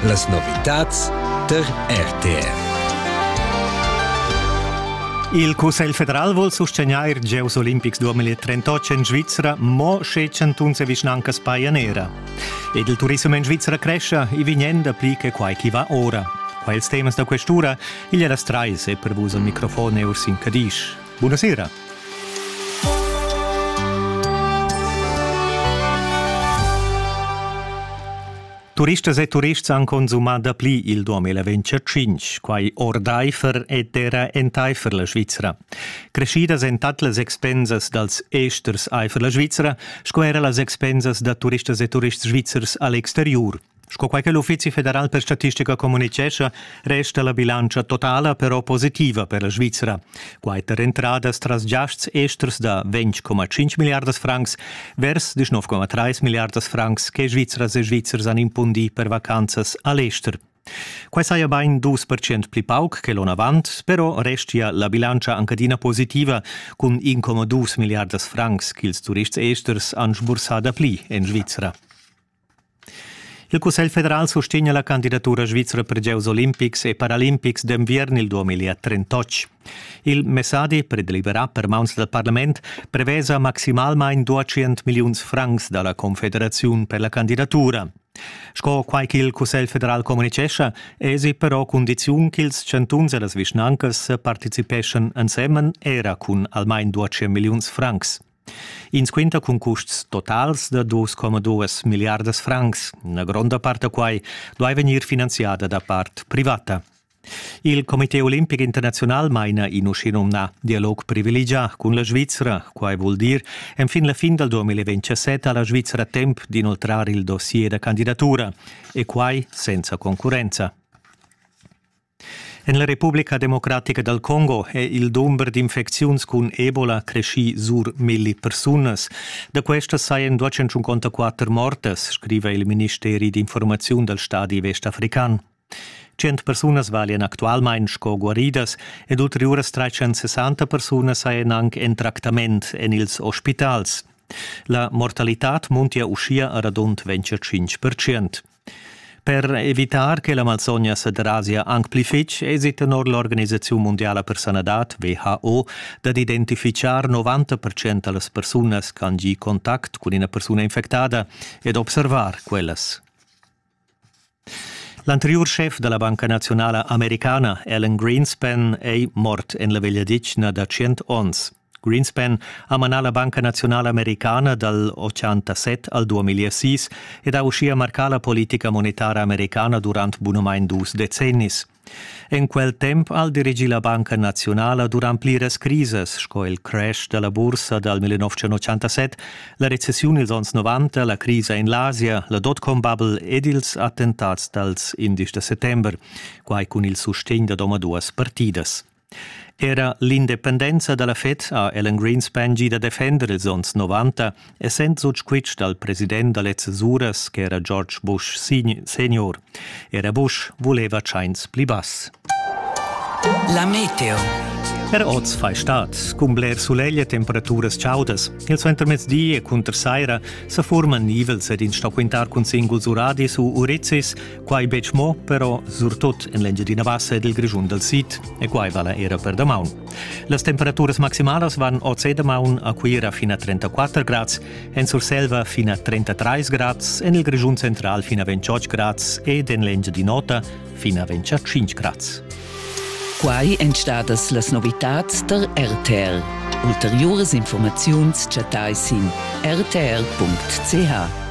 Las novitads tar RTR. Il Cussegl federal vul sustegnair gieus olimpics 2038 en Svizra mo sche chantuns e vischnancas pajan era. Ed il turissem en Svizra crescia, i vegnan dapli che quai chi va ora. Quels temas da questura, igl è las trais e per vus al microfon e Ursin Cadisch. Buonasera. Turistas e turists han consumà dapli il 2025, quai ordaifer ed era entaifer la Svizra. Creschidas èn tat las expensas dals esters aifer la Svizra sco era las expensas da turistas e turists svizzers a l'exteriur. Sco quai che l'Uffizi federal per statistica communitgescha, resta la bilantscha totala però positiva per la Svizra. Quai tar entradas tras giasts esters da 20,5 miliardas francs vers 19,3 miliardas francs che Svizras e Svizzers han impundì per vacanzas a l'ester. Quai saja bain 2% pli pauc che l'onavant, però restia la bilantscha anche adina positiva cun 1,2 miliardas francs ch'ils turists esters han sbursà dapli en Svizra. Il Cussegl federal sustegna la candidatura svizra per gieus olimpics e paralimpics d'enviern il 2038. Il messadi per deliberar per mauns dal parlament prevesa maximalmain 200 milliuns francs da la Confederaziun per la candidatura. Sco quai ch'il Cussegl federal communitgescha, èsi però cundiziun ch'ils chantuns e las vischnancas participeschan ensemen era cun almain 200 milliuns francs. Ins quinta cun custs totals da 2,2 milliardas francs. Una gronda part da quai duai vegnir finanziada da part privata. Il Comité olimpic internazional maina in uschinumnà dialog privilegià cun la Svizra. Quai vul dir enfin la fin dal 2027 ha la Svizra temp d'inoltrar il dossier da candidatura e quai senza concurrenza. En la Republica democratica dal Congo è il dumber d'infecziuns cun Ebola creschì sur milli persunas. Da questas sajan 254 mortas, scriva il ministeri d'informaziun dal stadi vestafrican. Cent persunas valian actualmain sco guaridas ed ulteriuras 360 persunas sajan anc en tractament en ils ospitals. La mortalitad muntia uschia a radund 25 percent. Per evitar che la malsogna sederasia anc pli fitg èsi tenor l'Organisaziun mundiala per sanadad WHO dad identifichar 90 da las persunas ch'han gì contact cun ina persuna infectada e d'observar quellas. L'anteriur schef da la Banca naziunala americana, Alan Greenspan, è mort en la vegliadetgna da tschient onns. Greenspan ha manà la Banca naziunala americana dal 87 al 2006 ed ha uschia marcà la politica monetara americana durant bunamain dus decennis. En quel temp ha el dirigì la Banca naziunala durant pliras crisas, sco il crash da la bursa dal 1987, la recessiun ils onns 90, la crisa in l'Asia, la dotcom-bubble ed ils attentats dals indisch da settember, quai cun il sustegn da omaduas partidas. Era l'independenza dalla FED ha Alan Greenspan gì da defender ils onns 90, essend sut squitsch dal president da lezzas uras ch'era George Bush senior. Era Bush vuleva tschains pli bass. La meteo. Er oz fai stat, cun bler sulegl e temperaturas chaudas. Il suentermezdi e cunter saira sa forman nivels ed in sto quintar cun singuls uradis u urizzis, Quai betg mo, però surtut en l'Engiadina Bassa ed il Grischun dal sid, e quai vala era per damaun. Las temperaturas maximalas van oz e damaun a Cuira fin a 34 grads, en Surselva fin a 33 grads, en il Grischun central fin a 28 grads ed en l'Engiadin'Ota fin a 25 grads. Quai èn stadas las novitads der RTL. Ulteriuras informaziuns chattai sin rtl.ch.